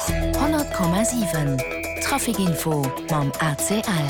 100,7 Traficinfo mam ACL.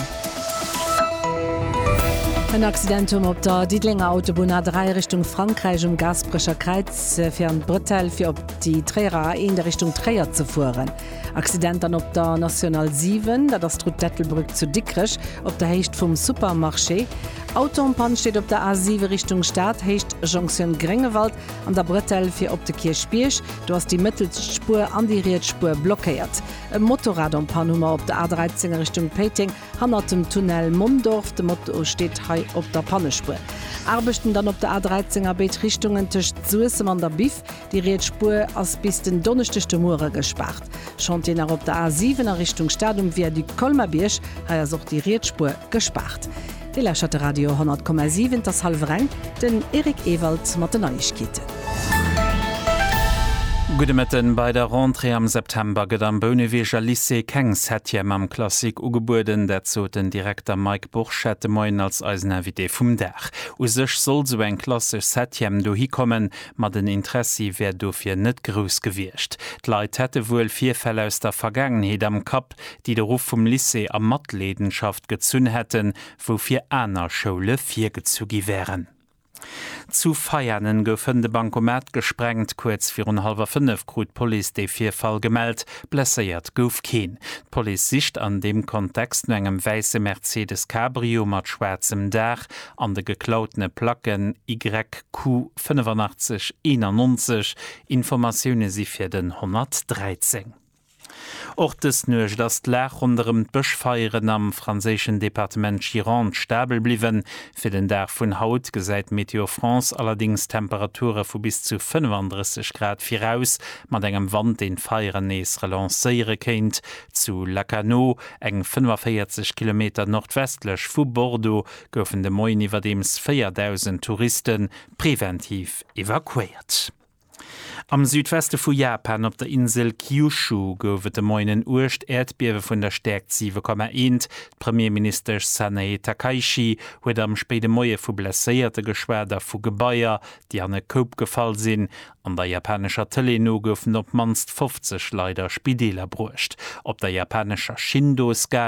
En Accident um op der Diddelenger Autobunn A3 Richtung Frankräich um Gaasperecher Kräiz fir an d'Bretelle fir op déi Tréierer A1 a Richtung Tréier ze fueren. Accident dann op der National 7, dat ass d'Route d'Ettelbrueck zu Dikrech op der Héicht vum Supermarché. Auto en Panne steet op der A7 Richtung Stad, Héicht Jonction Gréngewald an der Bretelle fir op de Kierchbierg. Do ass déi mëttelst Spuer an déi riets Spuer blockéiert. E Motorrad en panne hu mer op der A13 a Richtung Péiteng, hannert dem Tunnel Mondorf. De Moto steet hei op der Pannespuer. Aarbechten dann op der A13 a béid Richtungen tëscht Suessem an der Biff. Déi riets Spuer ass bis den Donneschdeg de Muere gespaart. Chantier nach op der A7 a Richtung Stad um Viaduc Colmar-Bierg. Hei ass och déi riets Spuer gespaart. Dir lauschtert de Radio 10,7, et ass hallwer eng, den Eric Ewald mat den Neiegkeeten. Gudde Mëtten, Bei der Rentrée am September gëtt am Bouneweger Lycée keng Septième am Classique ugebueden. Dat sot den Direkter Mike Burchette de Moien als eisen Invité vum Dag. U sech soll sou eng klassesch Septième dohi kommen, ma den Interessi wär dofir net grouss gewiescht. D'Leit hätte wuel Virfäll aus der Vergaangenheet am Kapp. Grupp, déi de Ruff vum Lycée a Matleedenschaft gezunn hätten, woufir aner Schoule virgezu gi wären. Zu Veianen gouf hënt e Bankomat gesprengt. Kuerz virun hallwer fënnef krut d'Police dee Virfall gemellt. Blesséiert gouf keen. D'Police sicht an deem Kontext no engem wäisse Mercedes Cabrio mat schwaarzem Daach an de geklautene Placken YQ 8581. Informatioune si fir den 113. Och dës Nuecht ass d'Lag ronderëm d'Bëschfeieren am franséischen Departement Gironde stabel bliwwen. Fir den Dag vun haut gesäit Météo France allerdéngs Temperature vu bis zu 35 Grad viraus, mat engem Wand, deen d'Feieren nees relancéiere kéint. Zu Lacanau, eng 45 Kilometer nordwestlech vu Bordeaux, goufen de Moien iwwerdeems 4.000 Touriste preventiv evakuéiert. Am Südweste vu Japan, op der Insel Kyushu, gouf et de Moien en uergt Äerdbiewe vun der Stäerkt 7,1. D'Premierministesch Sanae Takaichi huet am spéide Moie vu Blesséierte geschwat a vu Gebaier, déi an e Koup gefall sinn. An der japanescher Tëlee no goufen op d'mannst 50 Leit a Spideeler bruecht. Op der japanescher Shindo-Skala.